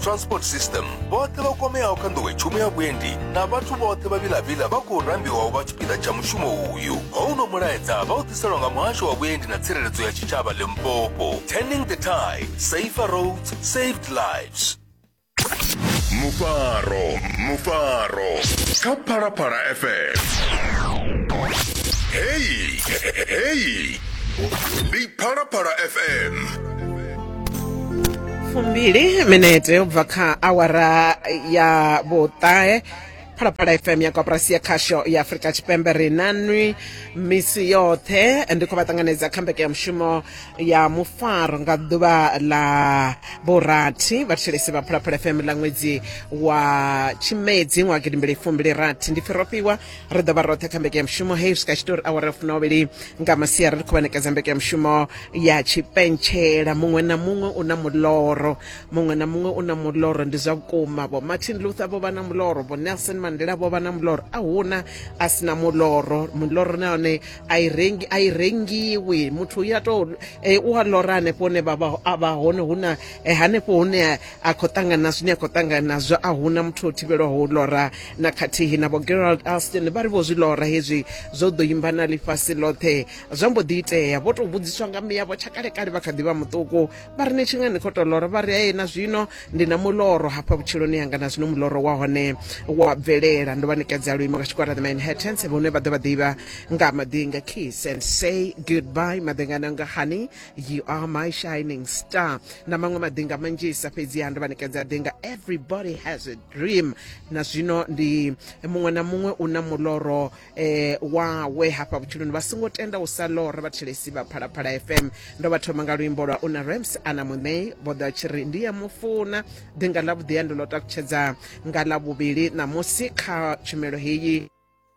transport system vhoṱhe vha kwameaho kha nḓowetshumo ya vhuendi na vhathu vhoṱhe vha vhilavhila vha khou rambiwaho vha tshipiḓa tsha mushumo uyu houno mulaedza vha u ḓiselwa nga muhasho wa vhuendi na tsireledzo ya tshitshavha limpopo turning the tide safer roads saved lives mufaro mufaro kha phalaphala fm heyi heyi ndi phalaphala fm fumbili minete u bva kha awara ya vhuṱahe phalaphala fm ya koporasi ya khasho ya afurika tshipembe ri nanwi misi yoṱhe ndi khou vha ṱanganedza kha mbekanyamushumo ya mufaro nga ḓuvha ḽa vhurathi vhathetshelesi vha phalaphala fm ḽa ṅwedzi wa tshimedzi ṅwaha gidimbili fumbili rathi ndi fhirofhiwa ri ḓo vha roṱhe kha mbekanyamushumo heyi swika tshitori awara ya funovhili nga masiari ri khou vhanekedza mbekanyamushumo ya tshipentshela muṅwe na muṅwe u na muloro muṅwe na muṅwe u na muloro ndi zwa vhukuma vho martin luther vho vha na muloro vho nelson mandela vho vha na muloro a huna a si na muloro muloro na yone a i rengi a i rengiwi muthu u ya to eh, u a lora hanefho hune vha vha- a vha hone hu na eh, hanefho hune a khou ṱangana na zwine a khou ṱangana nazwo a huna muthu o thivhelwaho u lora na khathihi na vho gerald alston vha ri vho zwi lora hezwi zwo ḓo imba na ḽifhasi ḽoṱhe zwa mbo ḓi itea vho tou vhudziswa nga miyavho tsha kalekale vha kha ḓi vha muṱuku vha ri ni tshi nga ni khou tou lora vha ri aye na zwino ndi na muloro hafha vhutshiloni yanga na zwino muloro wa hone wa bvelela ndo vha nikadza luimo nga tshikwara the manhattans vhone vha ḓo vha ḓivha nga maḓinga kiss and say goodbye maḓingana nga honey you are my shining star na maṅwe maḓinga manzhisa fhedziha ndo vha ṋekedza ḓinga everybody has a dream na zwino ndi muṅwe na muṅwe u na muloro eh, wawe hafha vhutshiloni vha songo tenda u sa lora vhathelesi vha phalaphala fm ndo vha thoma nga luimbo lwa una rams ana muṋei vho ḓa tshi ri ndi ya mufuna ḓinga ḽa vhuḓiya ndi ḽo takutshedza nga ḽa vhuvhili ṋamusi kha tshumelo heyi